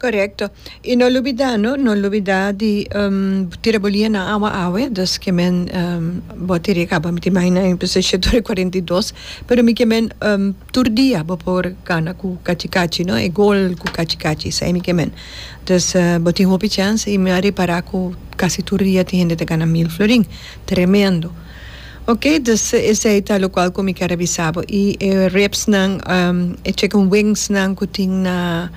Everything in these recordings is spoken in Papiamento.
Correcto. Y no lubida no, no lubida di tira bolia na awa awe, dus ke men bo a tiri caba miti mai na un position tur e cuarenta y dos, pero mi ke men tur dia bo por gana cu cachi cachi no, e goal cu cachi cachi esai mi ke men. Dus bo tin hopi chance y mi a repara cu casi tur dia tin hende ta gana mil florin. Tremendo. Ok, dus esai ta locual cu mi ker a bisa bo. Y e ribs nan, e chicken wings nan cu tin na.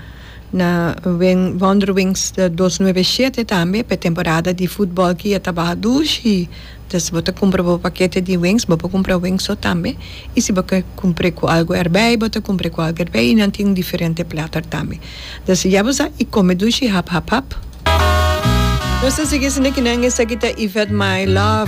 Na Wonderwings dos nuebe shete tambe pa e temporada di futbòl ki a ta baha dus i si bo ta kumpra bo pakete di wings bo por kumpra wings so tambe i si bo kier kumpre ku algu erbei bo ta kumpre ku algu erbei i nan tin un diferente plater tambe dus ya bo sa i kome dushi hap hap hap. Nos ta sigui esaki nan esaki ta Yvette my love.